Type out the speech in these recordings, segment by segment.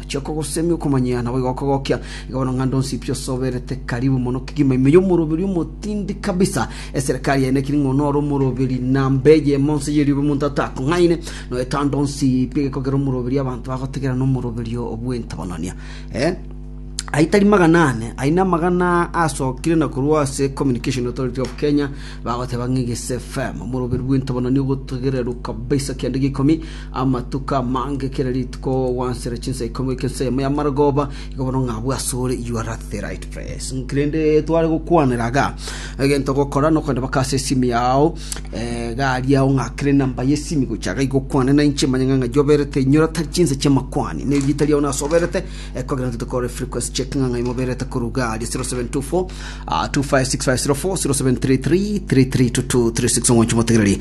Achia kogosemia okomanyia, naboigo okogokia. Iga bono ng'a ndonsi pi osoberete karibu mono kegima ime y'omoroberi omotindi kabisa. Eserekari yaye nekiri ng'a onore omoroberi namba eyemo nse y'erioba omonto atakong'aine. Noeta ndonsi pi egekogera omoroberi abanto bagotegera nomoroberi bw'entabanania. Eh, ayio tari magana ane, ayio namagana asokire na korwa ase Communication Authority of Kenya, bagoteba ng'a Egese FM, omoroberi bw'entabanania ogotegererwa kabisa kianda gia ikomi, Amatuko amange kera rituko gwansera chinsa ikomi goika ensemo y'amarogooba, igo bono ng'a bwasore you are at the right place. Ng'iki rende tware gokwanera iga, egento ogokora nokogenda mpaka ase esimi yao, eh, iga aria ong'akere enamba y'esimi gocha iga igokwane nainche manye ng'a ng'ai oberete inyora tari chinsa chi'amakwani, ne erieta riao nase oberete, Ekogera intwe tokore frequency check ng'ang'a imoberete koruga 0724-256-0703-3322-36 omonche motegereri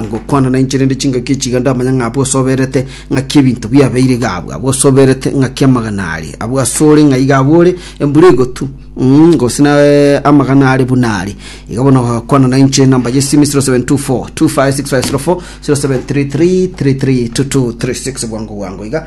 ngokwana na inche rende chingaki echiga ndamanya ng'a abwo osoberete ng'aki ebinto biabeire iga abwo abwo osoberete ng'aki amagana are abwo asore ng'a iga abwo ore embura egotu Mm, gose na eh, amagana are buna are iga bono gokwana na inche namba yesimi 0724-256-0703-3322-36 bwango bwango iga